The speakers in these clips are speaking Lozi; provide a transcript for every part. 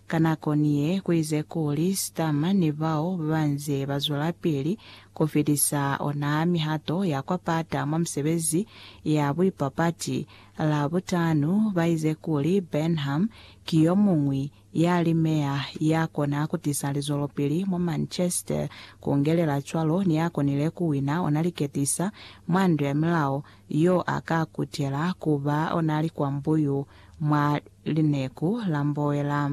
Ka nako ni ye, ku ize kuli Sturmer ni bao ba nze ba zwelapili ku fitisa ona mihato ya kwa pata mwa misebezi ya buipapati. Labutanu, ba ize kuli Burnham ki yo muñwi ya li meya ya kona ku tisa lizwelopili mwa Manchester, ku ngelela cwalo ni ya konile ku wina ona liketisa mwa ndu ya milao, yo a ka kutela ku ba ona likwambuyu. mwa lineku la mboela.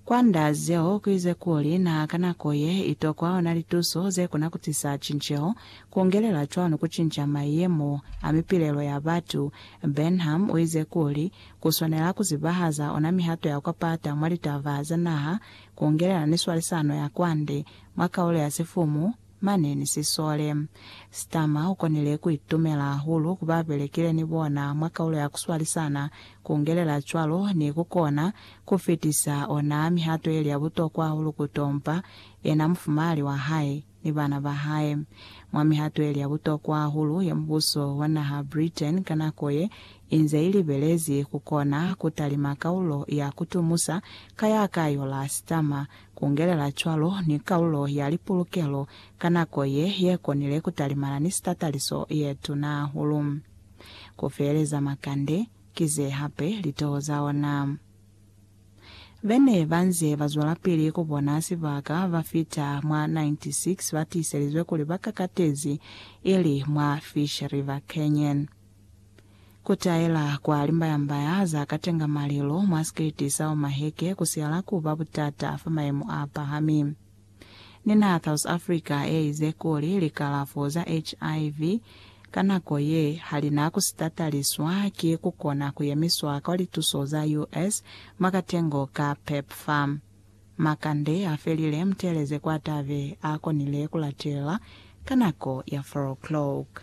Kwa nda zeo, ku ize kuli, Na ka nako ye i tokwa ona lituso ze kona ku tisa cinceho, ku ungelela cwalo ku cinca mayemo a mipilelo ya batu. Benham u ize kuli, Ku swanela ku zibahaza ona mihato ya kwa pata mwa litaba za naha, ku ungelela ni swalisano ya kwande mwa kaulo ya sifumu, Mane ni sisole. Starmer u konile ku itumela hahulu ku ba belekile ni bona mwa kaulo ya ku swalisana, ku ngelela cwalo ni ku kona ku fitisa ona mihato ye li ya butokwa hahulu ku tompa yena, mufumahali wa hae, ni bana ba hae. Mwa mihato ye li ya butokwa hahulu ye mubuso wa naha Britain ka nako ye inze i libelezi ku kona ku talima kaulo ya ku tumusa ka ya ka yola Starmer Kungelela cwalo ni kalulo ya lipulukelo ka nako ye, ye konile kutalimana ni sitataliso ye tuna hahulu. Ku feeleza makande, ki ze hape litoho za ona. Be ne ba nze ba zwelapili ku bona sibaka ba fita mwa 96 ba tiiselizwe kuli ba kakatezi, ili mwa Fish River Canyon. Ku taela kwa limbayambaya za katenga malilo mwa sikiliti sa Omaheke ku siala ku ba butata fa mayemo a pahami. Ni naha South Africa ye ize kuli likalafo za HIV ka nako ye ha li na ku si tataliswa ki ku kona ku yemiswa kwa lituso za US mwa katengo ka PEPFAR. Makande a felile muteeleze kwa tabe a konile ku latelela ka nako ya 4 o'clock.